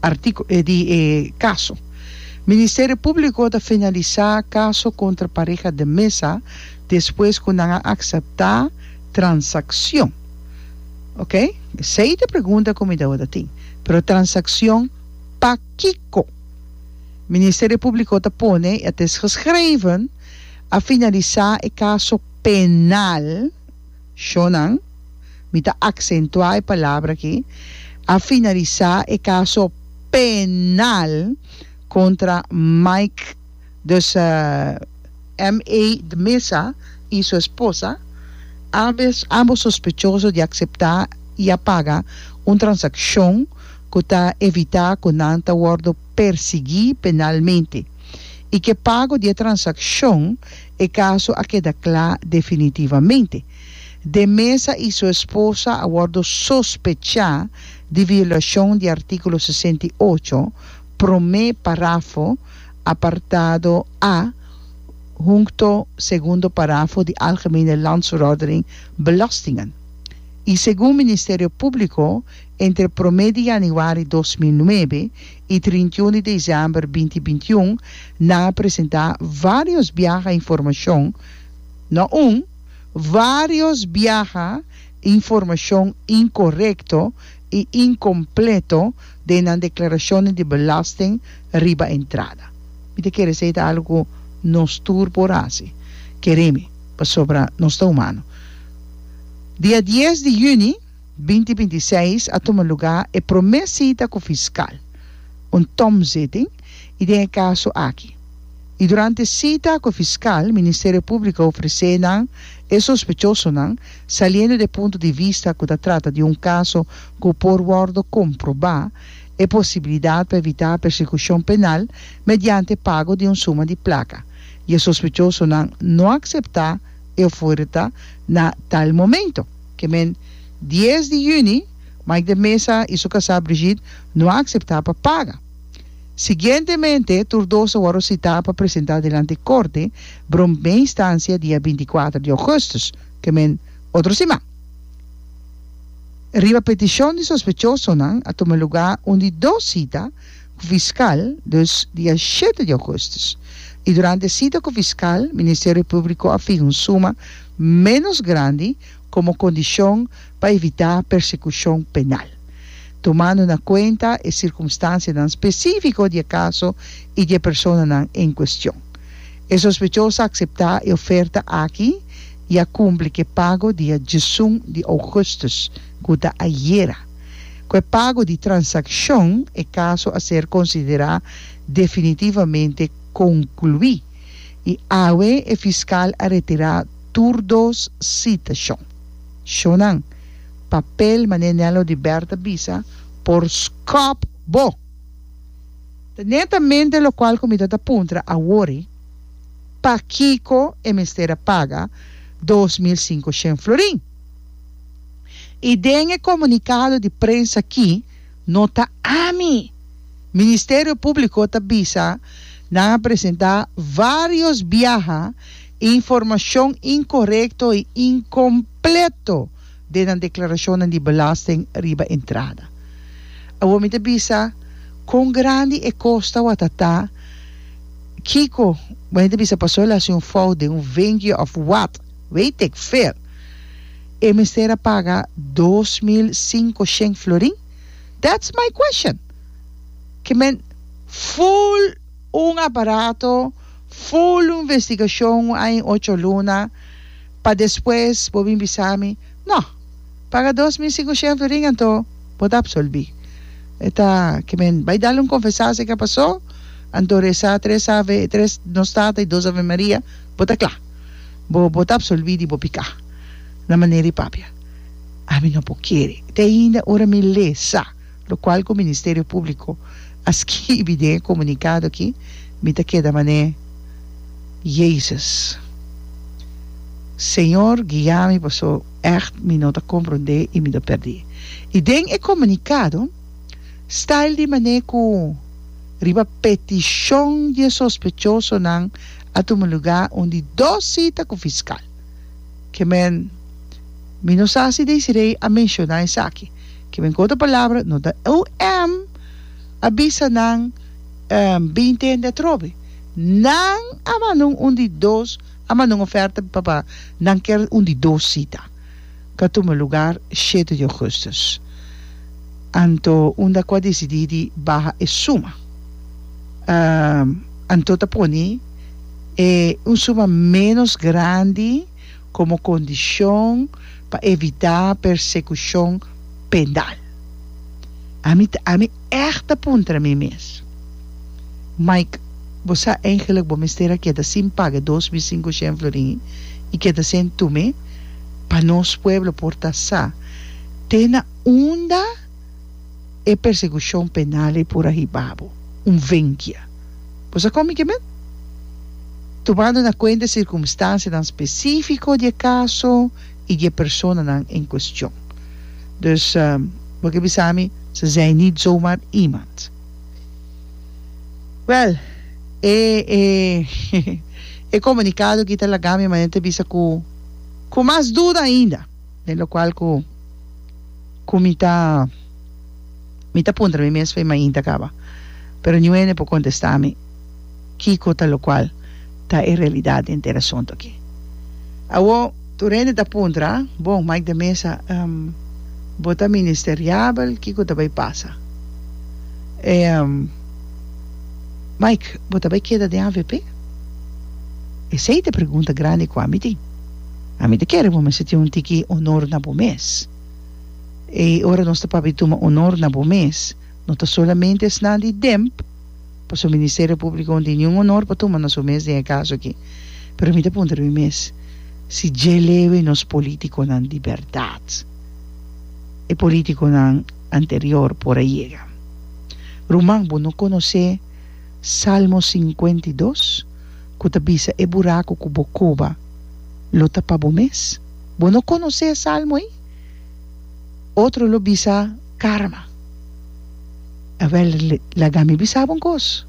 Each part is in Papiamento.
Artíkulo e di e kaso. Ministerio Públiko ta finalisá kaso kontra pareha de Meza despues ku nan a akseptá transakshon. Oke, esei ta pregunta ku mi ta wòrdu tin. Pero transakshon pa kiko? Ministerio Públiko ta pone, het is geschreven, a finalisá e kaso penal. Shónan, mi ta aksentuá e palabra akí, a finalisá e kaso penal kontra Mike, dus MA. de Mesa, i su esposa, ambes, ambos sospechoso di akseptá i a paga un transakshon ku ta evitá ku nan ta wòrdu persiguí penalmente, i ku e pago di e transakshon, E kaso a keda kla definitivamente. De Meza i su esposa a wòrdu sospechá di violashon di artíkulo sesenta i ocho, promé parafo, apartado a, hunto segundo parafo di Algemene Landsverordening Belastingen. I segun Ministerio Públiko entre promé di yanuari dos mil nuebe i trintiun di desèmber binti binti un nan a presentá vários biaha informashon, no un, vários biaha informashon inkorekto i inkompleto den nan deklarashonnan di belasting riba entrada. Mi ta kere esei ta algu ku nos tur por hasi, kere mi, pasobra nos ta humano. Dia dies di yüni. Binti binti seis a tuma lugá e promé sita ku fiskal, un tomzitting, i den e kaso aki. I durante sita ku fiskal Ministerio Públiko a ofresé nan e sospechosonan saliendo di e punto di vista ku ta trata di un kaso ku por wòrdu komprobá, e posibilidat pa evitá persekushon penal mediante pago di un suma di plaka, i e sospechosonan no a akseptá e oferta na tal momento. Kemen dies di yüni, Mike de Meza i su kasá Brigitte no a akseptá pa paga. Siguientemente, tur dos a wòrdu sitá pa presentá dilanti korte bromé instansia dia binti kuater di ougùstùs, kemen otro siman. Riba petishon di sospechosonan a tuma lugá un di dos sita ku fiskal, dus dia shete di ougustus, i durante e sita ku fiskal Ministerio Públiko a fiha un suma ménos grandi komo kondishon pa evitá persekushon penal, tumando na kuenta e sirkumstansianan spesífiko di e kaso i di e personanan en kuestion. E sospechoso a akseptá e oferta aki i a kumpli ku e pago dia diesun di ougustus, ku ta ayera. Ku e pago di transakshon e kaso a ser konsiderá definitivamente konkluí i awe e fiskal a retirá tur dos sitashon. Shonan, papel manera Nello di Bert a bisa por skòp bo! Ta netamente lokual ku mi ta ta puntra awor i pakiko e mester a paga dos mil sinku shen florin. y den e comunicado di prensa aki no ta ami, Ministerio Publico ta bisa nan a presenta varios biaha informacion incorrecto y incompleto den nan declaracionnan di belasting riba entrada. Awor mi ta bisa con grandi e costa wata ta, kico, bueno ta bisa paso el haci un fout den un vengue of what? Weet ik veel! E mester a paga dos mil sinku sheng florin? That's my question! Ke men full un aparato, full un investigashon un aña i ocho luna, pa despues bo bin bisa mi, No, paga dos mil sinku sheng florin anto bo ta apsolbi. E ta ke men bai dal un konfesá si ke a pasó, anto resá tres ave, tres Nos Tata i dos Ave Maria, bo ta kla. Bo bo ta absolví di bo piká. Na manera di papia, ami no por kere. Te ainda ora mi lé sa lokual ku Ministerio Públiko a skibi den e komunikado akí, mi ta keda manera, Jèsus, Señor, guia mi paso ègt mi no ta komprondé i mi ta pèrdí. I den e komunikado, style di manera ku riba petishon di e sospechosonan, a tuma lugá un di dos sita ku fiskal. Kemen, Mi no sa si Desiree a menshoná esaki. Kemen ku otro palabra no ta OM a bisa nan binte hende atrobe. Nan a mandun un di dos a mandun oferta papa nan ker un di dos sita. Ta tuma lugar shete di Augustus. Anto unda cu a dicidi di baha e suma? Anto ta poni e un suma menos grandi como condicion pa evita persecucion penal. Ami ta. Echt ta puntra mi mes. Mike, Bo sa eigenlijk bo mester a keda sin paga dos mil sinkoshen florin i keda sen tume pa nos pueblo por ta sa te na unda e persekushon penal ei por a hiba bo? Un venkia. Bo sa kon mi ke men? Tumando na kuenta e sirkumstansianan spesifiko di e kaso, i dje personanan en kuestion. Dus, bo ke bisa mi, ze zèi nit zomaar iemand. Wèl, e e komunikado aki ta laga mi manera ta bisa ku ku mas duda ainda, den lokual ku ku mi ta mi ta puntra mi mes, Fey mainta kaba? Pero niuwe no e por kontestá mi. Kiko ta lokual ta e realidat den ter asuntu aki? Awor, tur hende ta puntra, Bon, Mike de Meza, bo ta ministeriabel, kiko ta bai pasa? E, Mike, bo ta bai keda den avp? Esei ta e pregunta grandi ku ami tin. Ami ta kere bo mester tin un tiki onor na bo mes. E ora nos ta papia tuma onor na bo mes, no ta solamente esnan di demp, pa su ministerio públiko no tin niun onor pa tuma na su mes den e kaso aki. Pero mi ta puntra mi mes si dje lewe nos polítikonan di bèrdat e polítikonan anterior por a yega. Ruman, bo no konosé Salmo sinkuenta i dos ku ta bisa e buraku ku bo koba lo ta pa bo mes? Bo no konosé e salmo ei? Otro lo bisa. Karma, a ver laga mi bisabo un kos.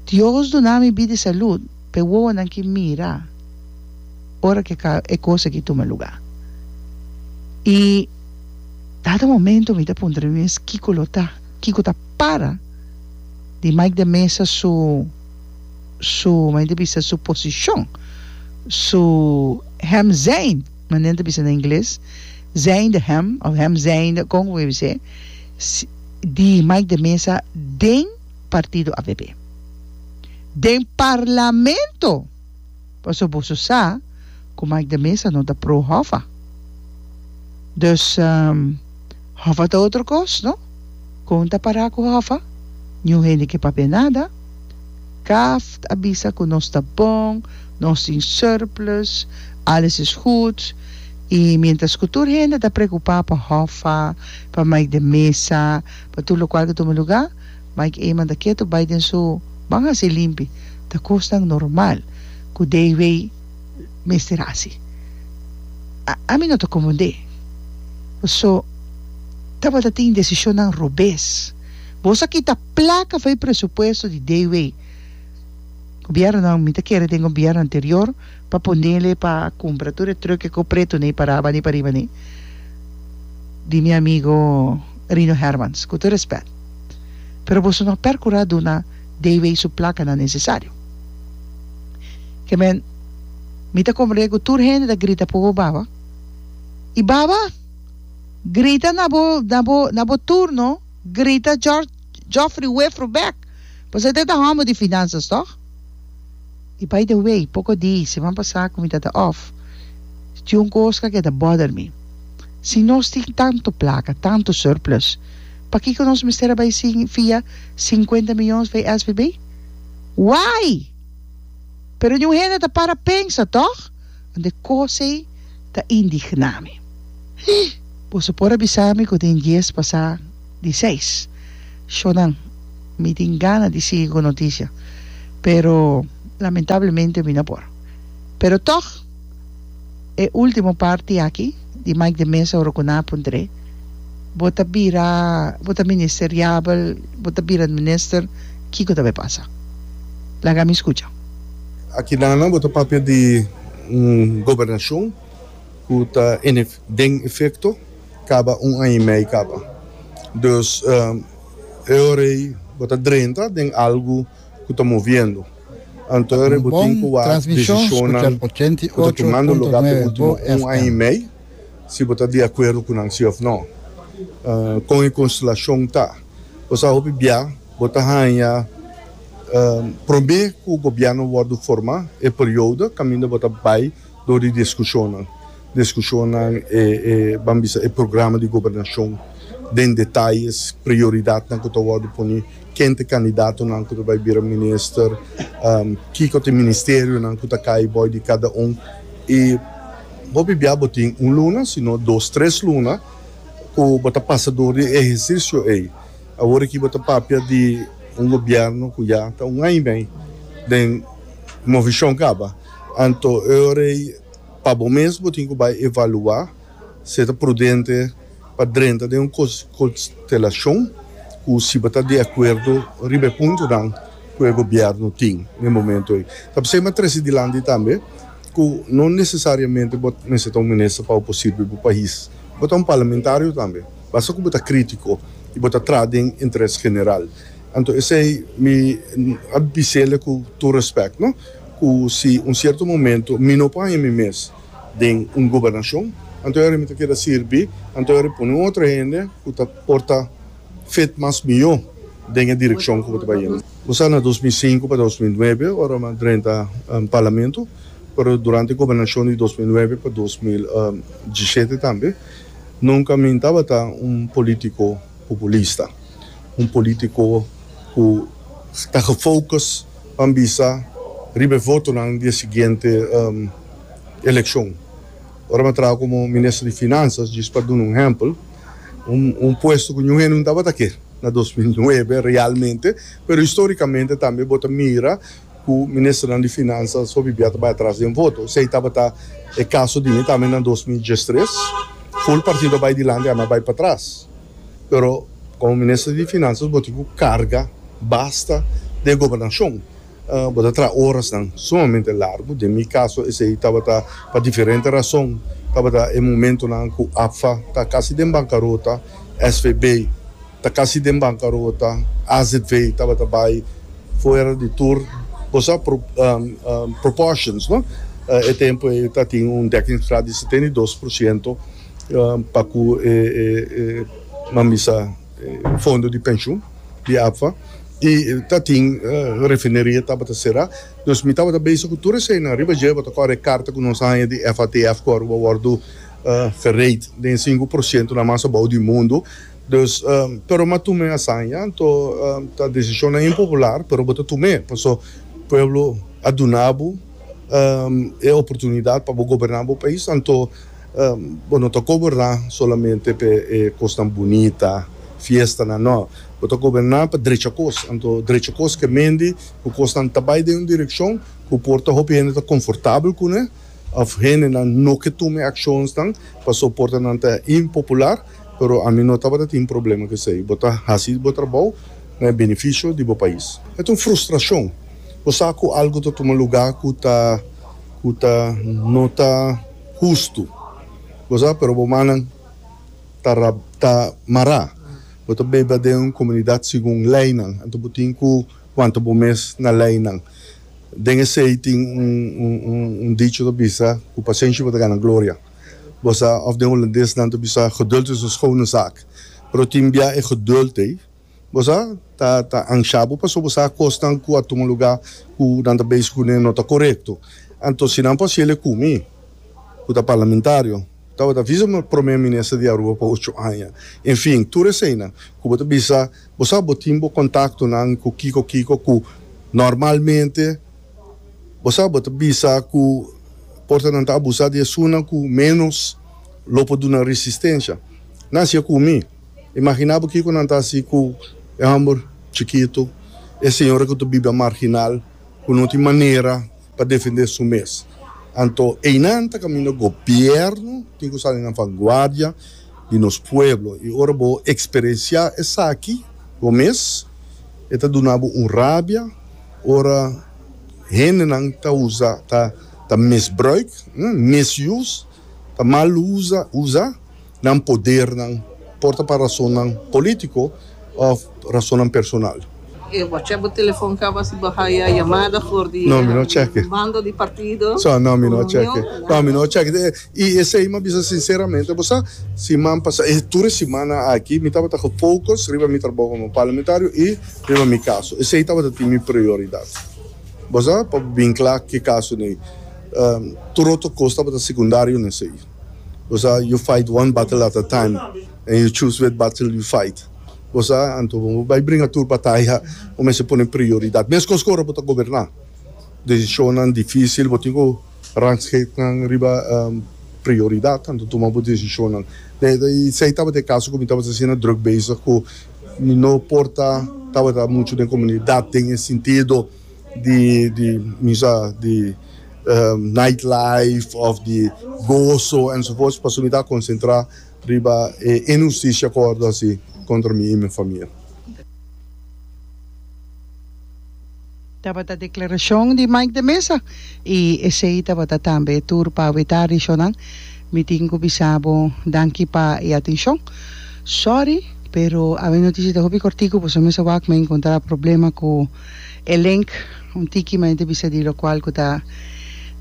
Dios duna mi bida i salud pa e wowonan ki mira ora ku e kos aki tuma lugá. I dado momento mi ta puntra mi mes kiko lo ta, kiko ta para di Mike de Meza su su, koma e ta bisa, su posishon, su hemzein. Manen ta bisa na ingles, zijnde hem, of hem zijnde, kon ku mi bis'é, di Mike de Meza den partido avp. Den parlamento! Paso boso sa ku Mike de Meza no ta pro Hoffa. Dus. Hòfa ta otro kos, no? Kon ta pará ku Hòfa? Niun hende ke papia nada. Kaft a bisa ku nos ta bon, nos tin surplus, alles is goed. I mientras ku tur hende ta preokupá pa Hòfa, pa Mike den mesa, pa tur lokual ku tuma lugá, Mike Eman ta ketu bai den su, ban hasi limpi, ta kosnan normal ku DW. mester hasi. Ami no ta konfundé. So, tabata tin desishonnan robes. Bo sa kita plaka for e presupuesto di Dewey. Gobièrnunan, mi ta kere den gobièrnu anterior pa ponele pa kumpra tur e trùk e kopretu nei pa Raba ni pa riba nei, di mi amigo Rino Hermans, ku tur rèspèt. Pero boso no a perkurá duna Dewey su plakanan nesesario. Ke men, mi ta komprendé ku tur hende ta grita por bo baba. I baba? Grita na bo, na bo, na bo turno, grita Jòrj, Jòfri Wefru bèk, pasobra e ta ta hòmber di finansas, tòg? I bai de wei, poko di siman pasá ku mi ta ta òf, tin un kos ku a keda bòder mi. Si nos tin tantu plaka, tantu surplus, pakiko nos mester a bai sin fia sinkuenta mions for e SVB? Wai! Pero niun hende ta para pensa, tòg? Wan e kos ei ta indigná mi. Hi! Boso por a bisa mi ku den dies pasá di seis shónan mi tin gana di sigui ku notisia, pero lamentablemente mi no por. Pero tòg. E ultimo parti aki di Mike de Mesa ora cu nan a puntr'e, Bo ta bira, bo ta ministeriabel, bo ta bira minister, kico ta bay pasa? Laga mi scucha. Aki nana bo ta papia di un gobernacion cu ta den efecto caba un aña y mei caba. Dus e ora ey bo ta drenta den algo. ku ta moviendo. Anto e bo tin ku wak desishonnan ku ta tumando lugá pa e último un aña i mei, si bo ta di akuerdo ku nan si òf nò. Kon e konstelashon ta? Bo sa hopi bia bo ta haña promé ku gobièrnu wòrdu forma e periodo kaminda bo ta bai. Dor di diskushonnan diskushonnan e e ban bisa e programa di gobernashon den detayes prioridatnan ku ta wòrdu pone ken ta e kandidatonan ku ta bai bira minister kiko ta e ministerionan ku ta kai bòi di kada un i hopi bia bo tin un luna sino dos tres luna ku bo ta pasa dor di e ehersisio ei awor aki bo ta papia di un gobièrnu ku ya ta un aña i mei den Movishon kaba. Anto eurei pa bo mes bo tin ku bai evaluá si e ta prudente pa drenta den un konstelashon ku si bo ta di akuerdo riba e puntonan ku e gobièrnu tin den momentu ei. Ta p'esei mi a trese dilanti tambe ku no nesesariamente bo mester ta un minister pa bo por sirbi bo pais. Bo ta un parlamentario tambe, basta ku bo ta krítiko i bo ta traha den interes general. Anto esei mi a bis'el ku tur respèk, no. Cu si un cierto momento mi no por haña mi mes den un gobernacion, anto ahora mi ta keda sirbi, anto ahora pone un otro hende cu ta por ta fit mas miyo den e direccion cu bo ta bay yendo. Bo sa na dos mil sinku pa dos mil nuebe ora mi a drenta Parlamento, pero durante e gobernacion di dos mil nuebe pa dos mil diesisiete tambe, nunca mi no tabata un politico populista, un politico cu ta gefocus. Pan bisa riba e votonan di e siguiente elekshon. Ora mi a traha komo minister di Finansas, djis pa duna un ehèmpel, un puesto ku niun hende no tabata ke na dos mil nuebe realmente, pero histórikamente tambe bo ta mira ku ministernan di Finansas hopi bia ta bai atras den voto. Esei tabata e kaso di mi tambe na dos mil diestres. Ful partido a bai dilanti, ami a bai patras. Pero como Minister di Finanzas bo tin cu carga basta den gobernacion. Bo ta traha horasnan sumamente largo. Den mi caso esey tabata pa diferente razon tabata e momentonan cu APFA ta casi den bancarota, SVB ta casi den bancarota, azv tabata bay fuera di tur. Bo sa proportions, no? E tempoey ta tin un dekkingsgraad di setenta i dos por ciento. pa ku e mambisa fondo di penshun di APFA i ta tin refineria tabata será nos mi tabata bese ku tur eseinan riba dje bota kore e karta ku nos a haña di FATF ku Aruba wòrdu fereit den sinku por sientu na mas abou di mundu dus pero m'a tum'e asaña anto ta desishonnan impopular pero bo ta tum'e paso pueblo a duna bo e oportunidat pa bo goberná bo pais anto. Bo no ta goberná solamente pa e kosnan bunita, fiestanan, nò. Bo ta goberná pa drecha kos. Anto drecha kos ke mendi ku kosnan ta bai den un direkshon ku por ta hopi hende ta konfortabel kuné òf hendenan no ke tuma e akshonsnan pasó por ta nan ta impopular, pero ami no tabata tin problema ku esei. Bo ta hasi bo trabou na e benefisio di bo pais. E ta un frustrashon. Bo sa ku algu ta tuma lugá ku ta ku ta no ta. hustu. Bo sa, pero bo mannan ta ra, ta mará. Bo ta bebe den un komunidat segun leinan, anto bo tin ku wanta bo mes na leinan. Den esei tin un, un, un, un dicho ta bisa, Ku pasenshi bo ta gana gloria. Bo sa, òf den hulandes nan ta bisa, geduld is een schone zaak. Pero tin bia e geduld ei. Bo sa ta ta anshá bo pasobra bo sa akosnan ku a tuma un lugá ku nan ta beishi kuné no ta korekto. Anto si nan por hasiel e ku mi, ku ta parlamentario, tabata bisa mi promé minister di Aruba pa ocho aña. En fin, tur eseinan ku bo ta bisa, bo sa bo tin bo kontaktonan ku kiko kiko ku normalmente bo sa bo ta bisa ku por ta nan ta abusá di esunnan ku ménos lo por duna resistensia. Nan hasié ku mi. Imaginá bo kiko nan ta hasi ku e hòmber chikitu, e señora ku ta bibia marginal, ku no tin manera pa defendé su mes. Anto einan ta kaminda gobièrnu tin ku sali na vanguardia di nos pueblo. I ora bo eksperensiá esaki bo mes, e ta duna bo un rabia ora hendenan ta usa, ta misbruik, misuse, ta mal usa, usa. Nan podernan por ta pa rasonnan polítiko òf rasonnan personal. E wòchè bo telefòn kaba si bo haya yamada for di e bando di partido ku union? I esei mi a bisa sinseramente, bo sa, siman pasá, e tur e simana aki mi tabata gefocus riba mi trabou komo parlamentario i riba mi kaso. Esei tabata tin mi prioridat. Bo sa, pa bin kla ke kaso n'ei. Tur otro kos tabata sekundario n'esei. Bosa you fight one battle at a time and you choose which battle you fight. Bosa anto bo bai bringa tur bataya bo mester pone prioridad. Mescos cu ora bo ta goberna. Decisionnan dificil bo tin cu ransgate nan riba prioridad anto tuma bo decisionnan. Esey tabata e caso cu mi tabata asina drug bezig cu mi no por ta tabata mucho den comunidad den e sintido. di di bisa di night life of di goso ensovoorts pasobra mi ta konsentrá riba e inhustisia ku wòrdu hasi kontra mi i mi famia. Tabata deklarashon di Mike de Meza i esei tabata tambe tur pa wetá rishonan. Mi tin ku bisa bo danki pa e atenshon. Sòri, pero awe notisia ta hopi kòrtiku, boso mester wak mi a enkontrá problema ku. E link un tiki mas e ta bisa di locual cu ta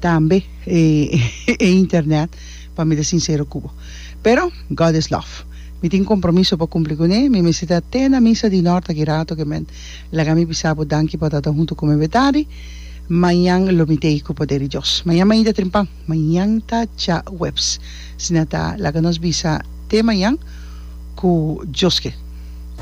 tambe e internet pa mi ta sincero cu bo. Pero God is love. Mi tin compromiso pa cumpli cu ne. Mi mester ta te na misa di nort aki rato oke men. Laga mi bisa bo danki pa ta ta hunto cu mi awe tardi. Mañan lo mi tei cu poder di Dios. Mañan mainta trimpan. Mañan ta djahueps. Sina ta laga nos bisa te mañan cu Dios ke.